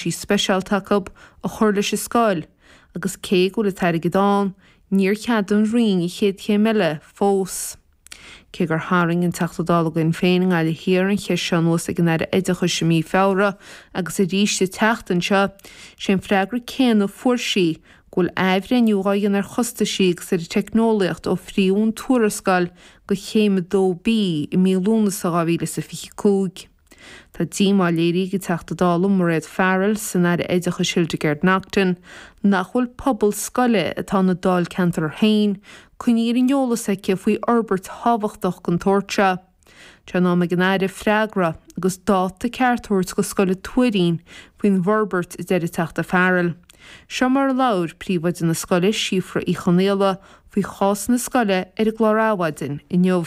sí speisialta acu a chur leis an scoil agus cé go bhfuil an t-airgead ann, níor cheadaigh an Roinn an chéad chéim eile fós. Cé gur tharraing an Teachta Dála againn féin i nGaillimh Thiar an cheist seo anuas ag an Aire Oideachais i mí Feabhra agus arís an tseachtain seo, sé an freagra céanna a fuair sí, go bhfuil athbhreithniú dhá dhéanamh ar chostaisí agus ar an teicneolaíocht ó faomhadh an tuarascáil go céim 2B i mí Lúnasa 2025. Tá díomá léirithe ag an Teachta Dála Mairéad Farrell san Aire Oideachais Hildegarde Naughton nach bhfuil pobal scoile atá ina Dáilcheantar féin coinnithe ar an eolas aici faoi fhorbairt thábhachtach den tsórt seo. Tá sé in am ag an Aire freagra agus dáta ceart a thabhairt do scoil an Tuairín faoin bhforbairt a deir an Teachta Farrell. Seo mar a labhair Príomhoide na scoile Síofra Uí Chonaola faoi chás na scoile ar an gclár Adhmhaidin inniu.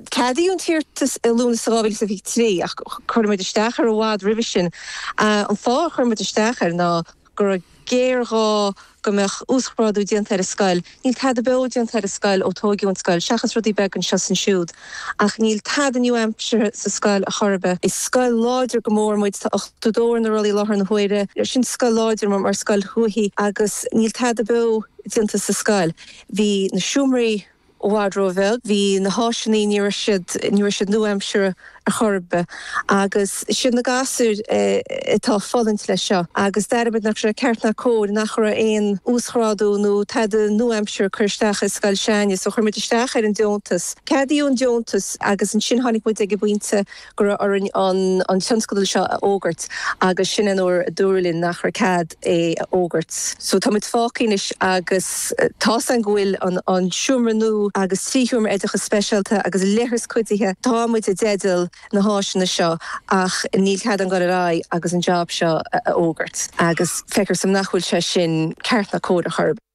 Ceadaíodh an t-iarratas i Lúnasa 2023 ach chuir muid isteach air i bhfad roimhe sin. An fáth ar chuir muid isteach air mar go raibh géarghá go mbeadh uasghrádú déanta ar an scoil. Níl tada beo déanta ar an scoil ó tóigeadh an scoil, seachas rudaí beaga anseo is ansiúd, ach níl tada nua-aimseartha sa scoil ar chor ar bith. Is scoil láidir go mór muid, tá ochtó ar na rollaí i láthair na huaire, sin scoil láidir mar scoil thuaithe, agus níl tada beo déanta sa scoil. Bhí na seomraí. I bhfad ró-bheag. Bhí na háiseannaí, ní raibh siad, ní raibh siad nua-aimseartha ar chor ar bith. Agus siad na gasúir atá ag fulaingt leis seo. Agus d'airigh muid nach raibh sé ceart ná cóir, nach raibh aon uasghrádú nó tada nua-aimseartha ag cur isteach sa scoil seo againne. So chuir muid isteach ar an deontas. Ceadaíodh an deontas agus ansin tháinig muid ag an bpointe go raibh orainn an tionscadal seo a fhógairt agus sin an uair a dúradh linn nach raibh cead é a fhógairt. So tá muid fágtha anois agus tá fhios againn go bhfuil an seomra nua agus trí sheomra oideachas speisialta agus leithreas cuidithe, tá muid i dteideal na háiseanna seo ach níl cead againn a ghoil ar aghaidh agus an jab seo a fhógairt agus feictear dom nach bhfuil sé sin ceart ná cóir ar chor ar bith.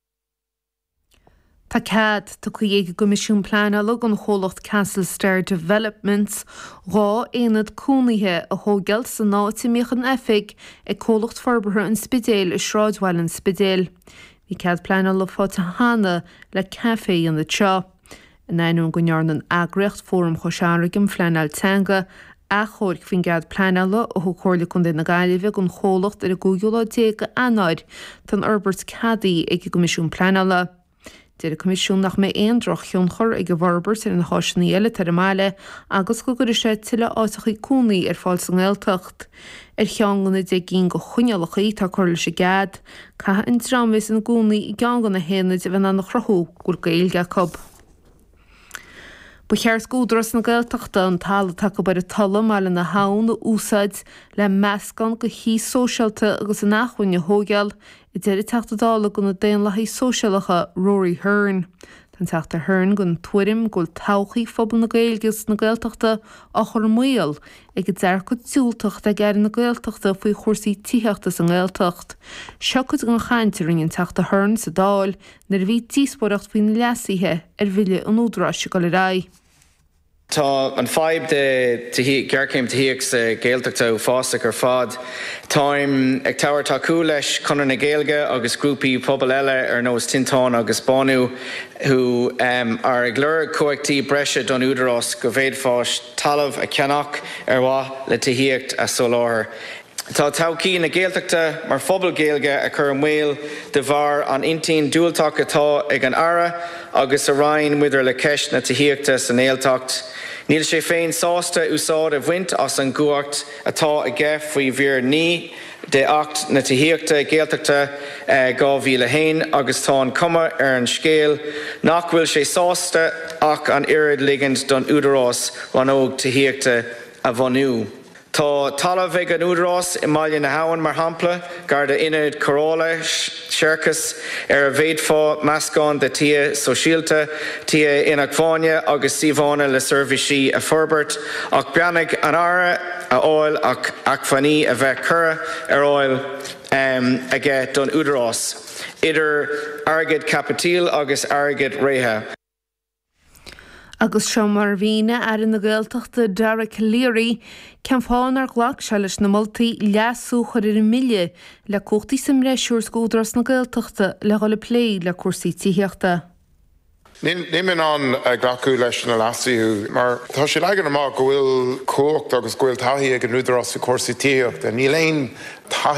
Tá cead tugtha ag an gCoimisiún Pleanála don chomhlacht Castle Star Developments dhá aonad cónaithe a thóigeáil san áit a mbíodh an oifig ag Comhlacht Forbartha an Spidéil i Sráidbhaile an Spidéil. Bhí cead pleanála faighte cheana le café san ionad seo. In ainneoin go ndearna an eagraíocht, Fóram Chois Fharraige um Phleanáil Teanga, achomharc faoin gcead pleanála a thug Comhairle Contae na Gaillimhe don chomhlacht ar an gcúigiú lá déag d'Eanáir, tá an fhorbairt ceadaithe ag an gCoimisiún Pleanála. Deir an Coimisiún nach mbeidh aon drochthionchar ag an bhforbairt ar na háiseanna eile atá ar an mbaile agus go gcuirfidh sé tuilleadh áiteachaí cónaí ar fáil sa nGaeltacht. Ar cheann de na deich gcinn de choinníollacha atá curtha leis an gcead. Caithfidh an dream a bheas ina gcónaí i gceann de na haonaid a bheith in ann a chruthú go bhfuil Gaeilge acu. Ba cheart d'Údarás na Gaeltachta an talamh atá acu ar an Tulaigh, i mBaile na hAbhann, a úsáid le meascán de thithe sóisialta agus inacmhainne a thóigeáil a deir an Teachta Dála do na Daonlathaigh Sóisialacha, Rory Hearne. Tá an Teachta Hearne den tuairim go bhfuil todhchaí phobal na Gaeilge agus na Gaeltachta á chur i mbaol ag an dearcadh diúltach atá ag Aire na Gaeltachta faoi chúrsaí tithíochta sa nGaeltacht. Seo cuid den chaint a rinne an Teachta Hearne sa Dáil nuair a bhí díospóireacht faoi na leasuithe ar Bhille an Údaráis ag dul ar aghaidh. Tá an fadhb de ghéarchéim tithíocht sa Ghaeltacht uafásach ar fad. Táim ag tabhairt tacú leis Conradh na Gaeilge agus grúpaí pobail eile ar nós Tinteán agus Bánú who are ag lorg cumhachtaí breise don Údarás go bhféadfadh sé talamh a cheannach ar mhaith le tithíocht a soláthar. Tá todhchaí na Gaeltachta mar phobal Gaeilge á chur i mbaol de bharr an intinn diúltach atá ag an Aire agus a Roinn maidir le ceist na tithíochta sa nGaeltacht. Níl sé féin sásta úsáid a bhaint as an gcumhacht atá aige faoi mhír 9 de Acht na Tithíochta, Gaeltachta, 2001 agus tá an chuma ar an scéal nach bhfuil sé sásta ach an oiread ligint don Údarás Rannóg Tithíochta a bhunú. Tá talamh ag an Údarás i mBaile na hAbhann, mar shampla, gar do Ionad Cóireála Séarachais, ar a bhféadfá meascán de tithe sóisialta, tithe inacmhainne agus suíomhánna le seirbhísí a fhorbairt, ach beannacht an Aire a fháil ach acmhainní a bheith curtha ar fháil aige don Údarás, idir airgead caipitil agus airgead reatha. Agus seo mar a mhínigh Aire na Gaeltachta Dara Calleary cén fáth nár ghlac sé leis na moltaí leasú a chur ar an mbille le cumhachtaí sa mbreis a thabhairt d'Údarás na Gaeltachta le dhul ag plé le cúrsaí tithíochta. Níl mé in ann glacadh leis na leasuithe mar tá sé leagtha amach go bhfuil cumhacht agus go bhfuil taithí ag an Údarás faoi chúrsaí tithíochta. Níl aon taithí.